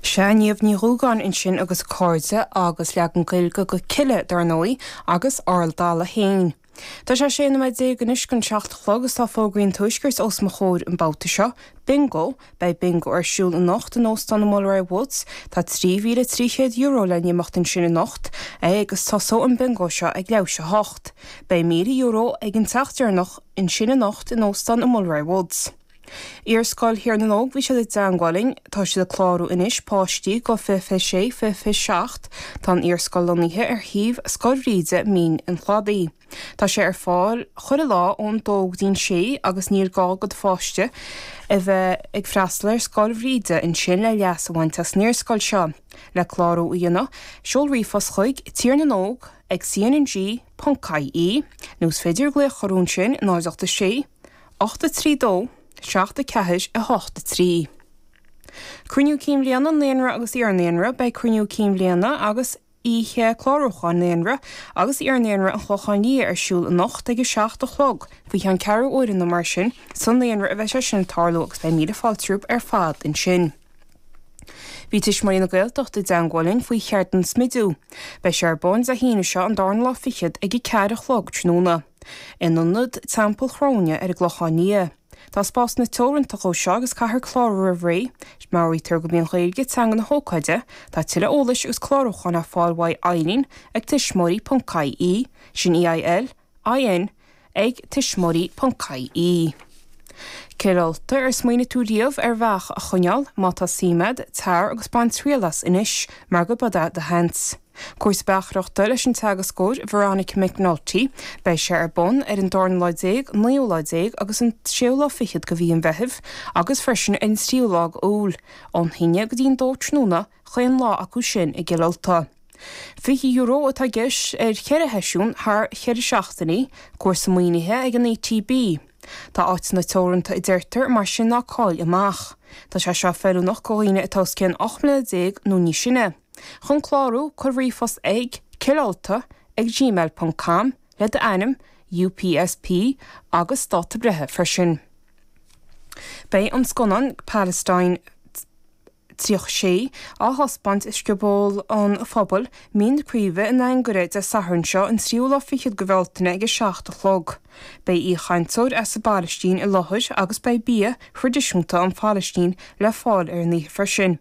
Seo Niamh Ní Dhúgáin ansin agus a cairde agus leagan Gaeilge de 'Killeagh' dar ndóigh, agus Aral Dalla féin. Tá sé a sé nóiméad déag anois chun seacht a chlog is tá fógraí an Tuaiscirt os mo chomhair an babhta seo. Bingo! Beidh bingo ar siúl anocht in Óstán an Mulroy Woods. Tá €3,300 le n-imeacht ansin anocht agus tosóidh an bingo seo ag leathuair tar éis a hocht. Beidh €1,000 ag an teach deireanach ansin anocht in Óstán an Mulroy Woods. Iarscoil Thír na nÓg, bhí siad i dteangmháil linn. Tá siad ag clárú anois páistí go fiche fiche sé, fiche fiche seacht. Tá an iarscoil lonnaithe ar shuíomh Scoil Bhríde, Mín an Chladaigh. Tá sé ar fáil chuile lá ón dó go dtí'n sé agus níl gá go do pháiste a bheith ag freastal ar Scoil Bhríde ansin le leas a bhaint as an iarscoil seo. Le clárú a dhéanamh, seol ríomhphost chuig, Tír na nÓg ag cnng ponc ie, nó is féidir glaoch orthu ansin, 0 8 6 8 3 2 7 4 8 3 Cruinniú Cinn Bhliana Naíonra agus Iar-Naíonra Beidh Cruinniú Cinn Bhliana agus Oíche Clárúcháin Naíonra agus Iar-Naíonra an Chlochán Liath ar siúl anocht ag 7 a chlog, faoi cheann ceathrú uaire nó mar sin, sa Naíonra a bheidh sé sin ag tarlú agus beidh míle fáilte rompu ar fad ansin. Bhí Tuismitheoirí na Gaeltachta i dteangmháil linn faoi cheardlann smididh. Beidh sé ar bun Dé hAoine seo, an darna lá fichead, ag a ceathair a chlog tráthnóna. In ionad Teampall Chróine ar an gClochán Liath, tá spásanna teoranta acu seo agus caithfear clárú roimh ré, meabhraítear gurb í an Ghaeilge teanga na hócáide Tá tuilleadh eolais agus clárúcháin ar fáil uaidh Eilín ag tuismitheoirí.ie, sin E I L I N ag tuismitheoirí.ie. Cill Ulta, ar smaoinigh tú riamh ar bheach a choinneáil? Má tá suim agat, tar agus bain triail as anois mar gurb eod é do sheans! Cúrsa beachaireachta leis an teagascóir Veronica McNulty. Beidh sé ar bun ar an darna lá déag, naoú lá déag agus an séú lá fichead de mhí an Mheithimh agus freisin ar an tríú lá de Iúil, ón haon déag go dtí an dó tráthnóna, chaon lá acu sin i gCill Ulta. €20 atá i gceist ar cheithre sheisiún thar cheithre seachtainí, cúrsa maoinithe ag an ETB. Tá áiteanna teoranta a deirtear, mar sin ná cáill amach. Tá sé seo feiliúnach go dhaoine atá os cionn ocht mbliana déag nó níos sine. Chun clárú, cuir ríomhphost ag, Cill Ulta, ag gmail dot com, le d'ainm, UPSP, agus dáta breithe freisin. Beidh an scannán Palestine 36 á thaispeáint i Scioból an Phobail, Mín na Craoibhe, in Anagaire, Dé Sathairn seo, an tríú lá fichead de Bhealtaine ag a seacht a chlog. Beidh aoichainteoir as an bPalaistín i láthair agus beidh bia thraidisiúnta ón Phalaistín le fáil ar an oíche freisin.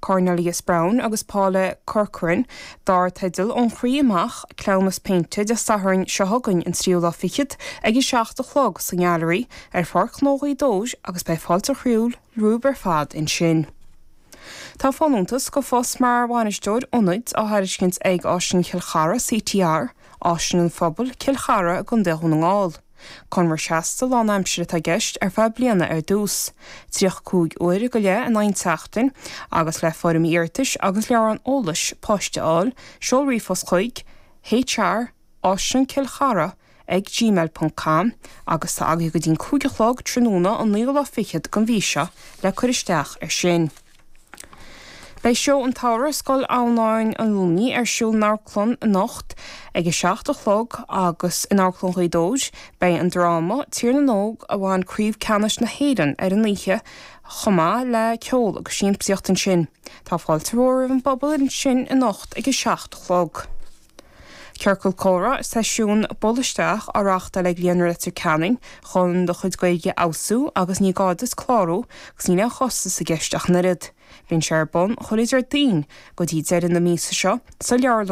Cornelius Browne agus Paula Corcoran, dar teideal 'Ón Chroí Amach, Cleamhnas Péinte' Dé Sathairn seo chugainn an tríú lá fichead ag a seacht a chlog sa nGailearaí ar Pháirc Chnó Ghaoth Dobhair agus beidh fáilte chroíúil romhaibh ar fad ansin. Tá folúntas do phost mar Bhainisteoir Ionaid á thairiscint ag Áislann Chill Chartha CTR, Áislann an Phobail, Cill Chartha i gContae Dhún na nGall. Conradh seasta lánaimsire atá i gceist ar feadh bliana ar dtús, 35 uair go leith in aghaidh an tseachtain, agus le foirmí iarratais agus leabhrán eolais poist a fháil, seol ríomhphost chuig, hr@cillchartha ag gmail ponc com, agus tá agaidh go dtí'n cúig a chlog tráthnóna an naoú lá fichead den mhí seo le cur isteach ar sin. Beidh Seó an tSamhraidh i Scoil Adhamhnáin an Luinnigh ar siúl san amharclann anocht ag a seacht a chlog agus in Amharclann Ghaoth Dobhair beidh an dráma Tír na nÓg a bhain Craobh Ceannais na hÉireann ar an oíche chomh maith le ceol agus siamsaíocht ansin. Tá fáilte mhór roimh an bpobal ansin anocht ag a seacht a chlog. Ciorcal Comhrá, Seisiún 'buail isteach' á reáchtáil ag Líonra Leitir Ceanainn chun do chuid Gaeilge a fheabhsú agus ní gá duit clárú agus níl aon chostas i gceist ach an oiread. Bíonn sé ar bun chuile Déardaoin go dtí deireadh na míosa seo sa